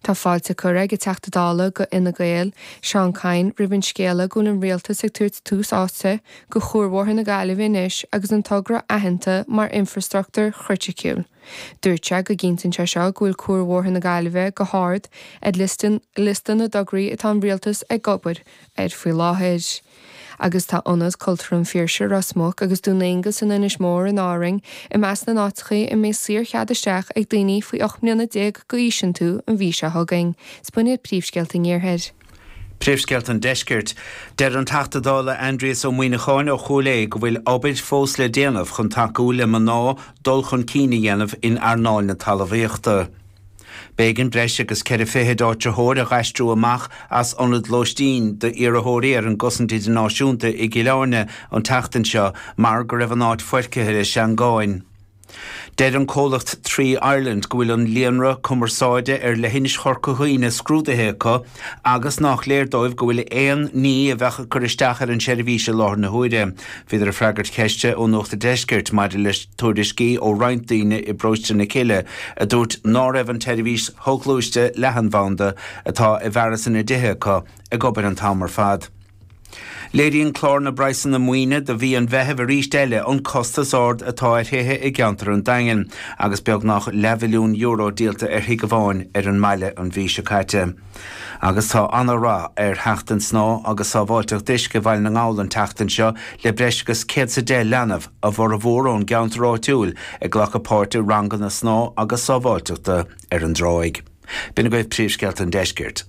Tá fáilte curtha ag an Teachta Dála go Fhine Gael, Seán Kyne, roimh an scéala go bhfuil an Rialtas ag tabhairt tús áite go chuarbhóthar na Gaillimhe anois agus an togra aitheanta mar infrastruchtúr chriticiúil. Dúirt sé go gcinntíonn sé seo go bhfuil cuarbhóthar na Gaillimhe go hard ar liosta na dtograí atá an Rialtas ag obair air faoi láthair. agus tá Ionad Cultúrtha an Phiarsaigh, Ros Muc, agus Dún Aonghasa in Inis Mór in Árainn i measc na n-áiteachaí a mbeidh saor-chead isteach ag daoine faoi 18 mbliana d'aois iontu an mhí seo chugainn. 'S b'in iad, Príomhscéalta an Iarthair. Príomhscéalta an Deiscirt. Deir an Teachta Dála Aindrias Ó Muíneacháin ó Chúil Aodha go bhfuil obair fós le déanamh chun tacú le mná dul chun cinn a dhéanamh in earnáil na talmhaíochta. B'éigean breis agus ceithre fichid áitritheoir a dh'aistriú amach as ionad lóistín d'iarrathóirí ar an gCosaint Idirnáisiúnta i gCill Áirne an tseachtain seo mar go raibh an áit foirgthe le seangáin. Deir an comhlacht Three Ireland go bhfuil an líonra cumarsáide ar leithinis Chorca Dhuibhne scrúdaithe acu, agus nách léir dóibh go bhfuil aon ní a bheadh ag cur isteach ar an seirbhís i láthair na huaire. Bhíodar ag freagairt cheiste ó Nuacht a' Deiscirt maidir le tuairiscí ó roinnt daoine i bParóiste na Cille a dúirt ná raibh an tseirbhís shoghluaiste leathanbhanda atá i bhfearas 'na dtithe acu ag obair an t-am ar fad. Léiríonn clár na bpraghsanna maoine do mhí an Mheithimh arís eile an costas ard atá ar thithe i gceantar an Daingin agus beagnach leathmhilliún euro díolta ar thigh amháin ar an mbaile an mhí seo caite. Agus tá an-rath ar Sheachtain Snámha agus Sábháilteacht Uisce Bhaile na nGall an tseachtain seo le breis agus céad is a deich leanbh, a bhformhór ón gceantar áitiúil, ag glacadh páirt i ranganna snámha agus sábháilteachta ar an dtráigh. B'in agaibh príomhscéalta an deiscirt.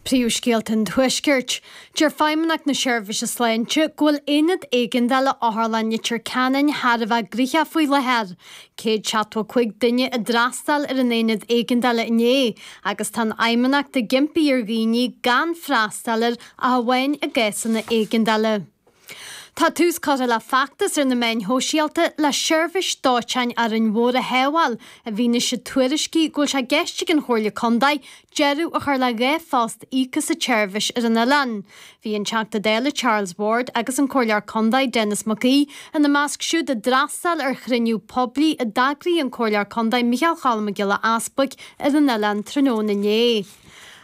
Príomhscéalta an Tuaiscirt. Deir Feidhmeannacht na Seirbhíse Sláinte go bhfuil aonad éigeandála Otharlann Leitir Ceanainn thar a bheith gnoitheach faoi láthair. 175 duine a d'fhreastail ar an aonad éigeandála inné agus tá an Fheidhmeannacht ag impí ar dhaoine gan freastal air ach amháin i gcásanna éigeandála. Tá tús curtha le feachtas ar na meáin shóisialta le seirbhís dóiteáin Árainn Mhór a shábháil i bhfianaise tuairiscí go bhfuil sé i gceist ag an Chomhairle Contae deireadh a chur le dhá phost íoctha sa tseirbhís ar an oileán. Bhí an Teachta Dála Charles Ward agus an Comhairleoir Contae Denis McGee ina measc siúd a d'fhreastail ar chruinniú poiblí a d'eagraigh an Comhairleoir Contae Micheál Cholm Mac Giolla Easbuig ar an oileán tráthnóna inné.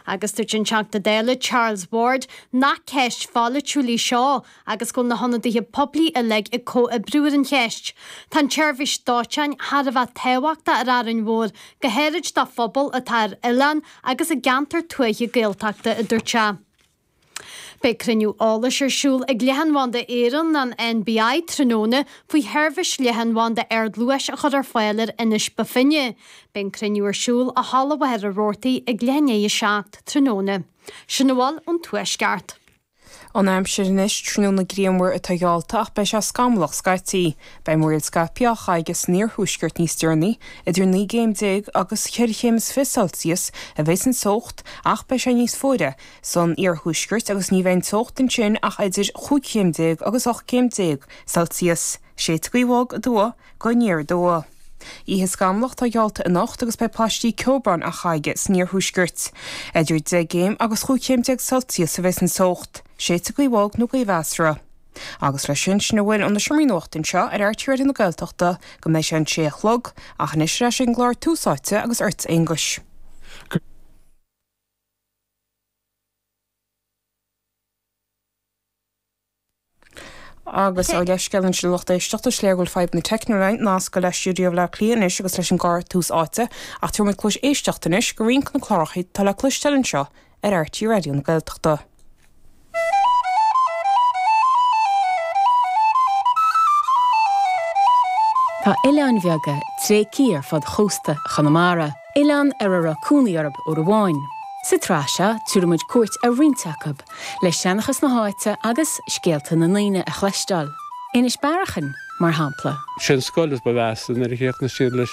Agus dúirt an Teachta Dála Charles Ward nach ceist pholaitiúil í seo agus go bhfuil na hionadaithe poiblí uilig ag comhoibriú ar an cheist. Tá an tseirbhís dóiteáin thar a bheith tábhachtach ar Árainn Mhór, go háirid do phobal atá ar oileán agus i gceantar tuaithe Gaeltachta, a dúirt sé. Beidh cruinniú eolais ar siúl ag Leathanbhanda Éireann, an NBI, tráthnóna faoi sheirbhís leathanbhanda ardluais a chur ar fáil ar Inis Bó Finne. Beidh an cruinniú ar siúl i Halla Mhachaire Rabhartaigh ag leath i ndiaidh a seacht tráthnóna. Sin a bhfuil ón Tuaisceart. An aimsir anois, tráthnóna grianmhar atá geallta ach beidh sé scamallach scaití. Beidh múraíl scaipthe á chaitheamh san iarthuaisceart níos deireanaí. Idir naoi gcéim déag agus ceithre chéim is fiche Celsius a bheas an teocht ach beidh sé níos fuaire san iarthuaisceart agus ní bheidh an teocht ansin ach idir chúig chéim déag agus ocht gcéim déag Celsius. Séidfidh gaoth bhog aduaidh go aniar aduaidh. Oíche scamallach atá geallta anocht agus beidh paistí ceobhráin á chaitheamh san iarthuaisceart. Idir deich gcéim agus chúig chéim déag Celsius a bheas an teocht. Séidfidh gaoth bhog nó gaoth mheasartha. Agus leis sin, sin a bhfuil ó na seomraí nuachta anseo ar RTÉ Raidió na Gaeltachta go mbeidh sé an sé a chlog, ach anois ar ais ag an gclár Tús Áite agus ort, a Aonghuis. Agus ar leithscéal ansin a lucht éisteachta, is léir go bhfuil fadhbanna teicniúla ag nascadh le stiúideo Bhleá Cliath anois agus leis an gclár Tús Áite, ach tabharfaidh muid cluais éisteacht anois go roinnt de na cláracha atá le cloisteáil anseo ar RTÉ Raidió na Gaeltachta. Tá oileáin bheaga tréigthe ar fud chósta Chonamara, oileáin ar a raibh cónaí orthu uair amháin. Sa tsraith seo, tabharfaidh muid cuairt ar roinnt acu, le seanchas na háite agus scéalta na ndaoine a chloisteáil, Inis Bearacháin, mar shampla. Sé an scoil is ba mheasa nuair a chríochnaigh siad leis.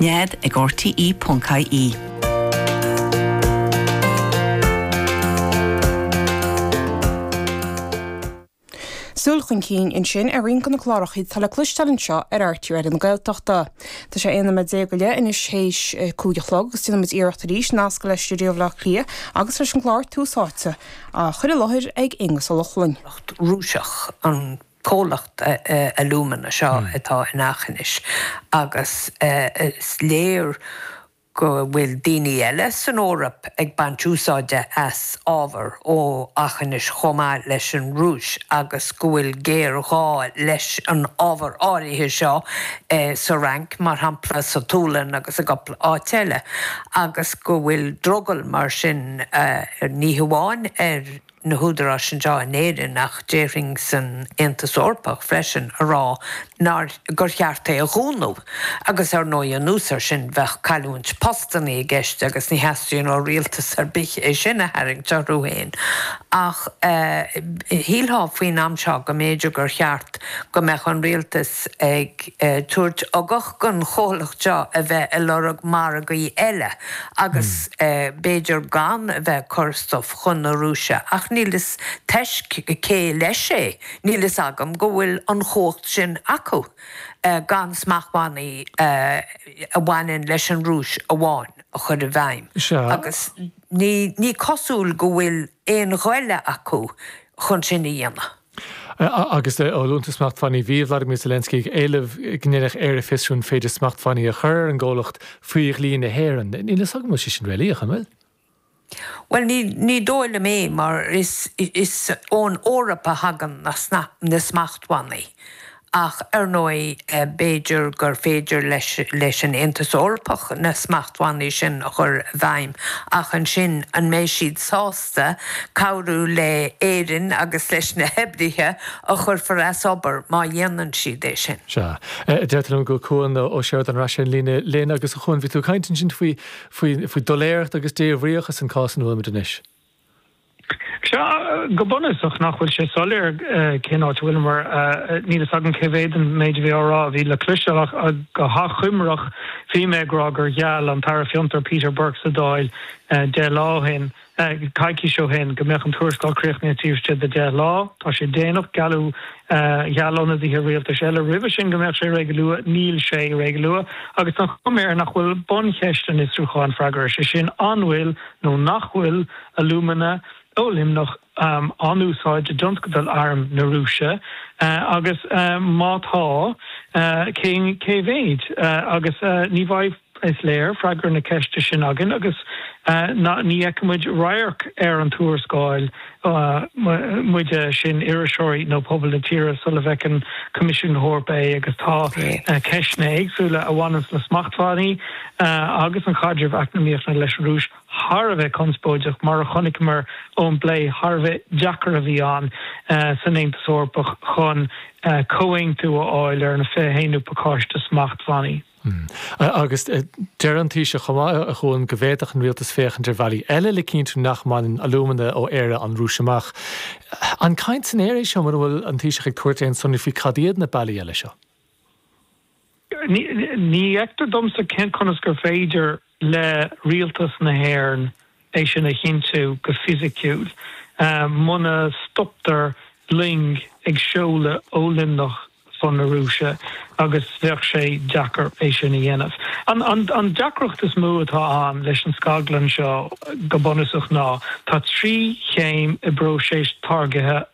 Nead ag RTÉ.ie. Súil chun cinn ansin ar roinnt de na cláracha atá le cloisteáil anseo ar RTÉ Raidió na Gaeltachta. Tá sé 11 nóiméad go leith anois théis a cúig a chlog agus déanfaidh muid iarracht arís nascadh le stiúideo Bhleá Cliath agus leis an gclár Tús Áite, á chur i láthair ag Aonghus Ó Lochlainn. Rúiseach an. comhlacht alúmana seo atá in Eachinis agus is léir go bhfuil daoine eile san Eoraip ag baint úsáide as ábhar ó Eachinis chomh maith leis an Rúis agus go bhfuil géarghá leis an ábhar áirithe seo sa Fhrainc mar shampla, sa tSualainn agus i gcúpla áit eile agus go bhfuil drogall mar sin ní hamháin ar. na húdaráis anseo in Éirinn, ach déarfainn san Aontas Eorpach freisin, a rá nár, gur cheart é a dhúnadh. Agus ar ndóigh anuas air sin bheadh cailliúint postannaí i gceist agus ní theastaíonn ó rialtas ar bith é sin a tharraingt orthu fhéin. Ach shílfeá faoin am seo go mb'fhéidir gur cheart go mbeadh an rialtas ag. ag tabhairt ugach don chomhlacht seo a bheith ag lorg margaí eile agus b'fhéidir gan a bheith ag cur stuif chun na Rúise ach níl a fhios toisc cé leis é, níl a fhios agam go bhfuil an chumhacht sin acu gan smachtbhannaí a bhaineann leis an Rúis amháin a chur i bhfeidhm agus ní cosúil go bhfuil aon ghoile acu chun sin a dhéanamh. agus ó thaobh smachtbhannaí bhí Vladimir Zelensky ag éileamh go ndéanfadh Éire fiosrú an féidir smachtbhannaí a chur ar an gcomhlacht faoi dhlí na hÉireann. Níl a fhios agam an bhfuil sé sin réalaíoch, an bhfuil? Bhuel, ní dóigh liom é mar is ón Eoraip a thagann na smachtbhannaí Ach ar ndóigh b'fhéidir gur féidir leis an Aontas Eorpach na smachtbhannaí sin a chur i bhfeidhm ach ansin an mbeidh siad sásta cabhrú le Éirinn agus leis na hoibrithe a chuirfear as obair má dhéanann siad é sin? Sea. Deirtear liom go bhfuil Cuan Ó Seireadáin ar ais ar an líne linn. Agus a Chúan, bhí tú ag caint ansin faoi faoi faoi doiléireacht agus débhríocht sa chás ina bhfuilimid anois. Sea, go bunúsach, nach bhfuil sé soiléir cén áit a bhfuil muid? Níl a fhios agam cé mhéad den méid a bhí á rá a bhí le cloisteáil, ach go hachomair, bhí mé ag rá gur gheall an tAire Fiontar, Peter Burke, sa Dáil deich lá ó shin, coicís ó shin, go mbeadh an tuarascáil críochnaithe taobh istigh de dheich lá. Tá sé déanach. Gealladh, gheall ionadaithe rialtais eile roimhe sin go mbeadh sé réidh go luath. Níl sé réidh go luath. Agus an chuma air nach bhfuil buncheist an fhiosrúcháin freagartha, sé sin, an bhfuil nó nach bhfuil alúmana ó Luimneach á n-úsáid i dtionscal arm na Rúise, agus má tá, cé cé mhéad? Agus ní bheidh, is léir, freagra na ceiste sin againn agus ní fheicfimid radharc ar an tuarascáil muide sin, iriseoirí nó pobal na tíre, sula bhfeiceann Coimisiún na hEorpa é agus tá ceisteanna éagsúla a bhaineann le smachtbhannaí agus an chaidreamh eacnamaíochta leis an Rúis thar a bheith conspóideach, mar a chonaiceamar ón bplé thar a bheith deacair a bhí ann san Aontas Eorpach chun comhaontú a fháil ar an 21ú pacáiste smachtbhannaí. Hm. Agus deir an Taoiseach chomh maith a Chuan go bhféadfadh an Rialtas féachaint ar bhealaí eile le cinntiú nach mbaineann alúmana ó Éire an Rúis amach. An caint san aer é seo muna bhfuil an Taoiseach ag tabhairt aon sonraí faoi cad iad na bealaí eile seo? Ní fheictear domsa conas gur féidir le Rialtas na hÉireann é sin a chinntiú go fisiciúil. Muna stoptar loing ag seoladh ó Luimneach chun na Rúise agus bheadh sé deacair é sin a dhéanamh. An deacracht is mó atá ann leis an scaglann seo go bunúsach ná tá trí chéim i bpróiseas táirgithe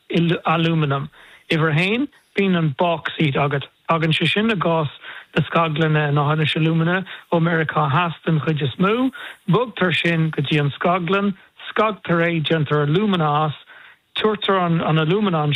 alúmanaim. Uimhir a haon, bíonn an báicsít agat. Tagann sé sin, i gcás na scaglainne in Eachinis Alumina, ó Meiriceá Theas den chuid is mó. Bogtar sin go dtí an scaglann, scagtar é, déantar alúmana as, tiúrtar an alúmana,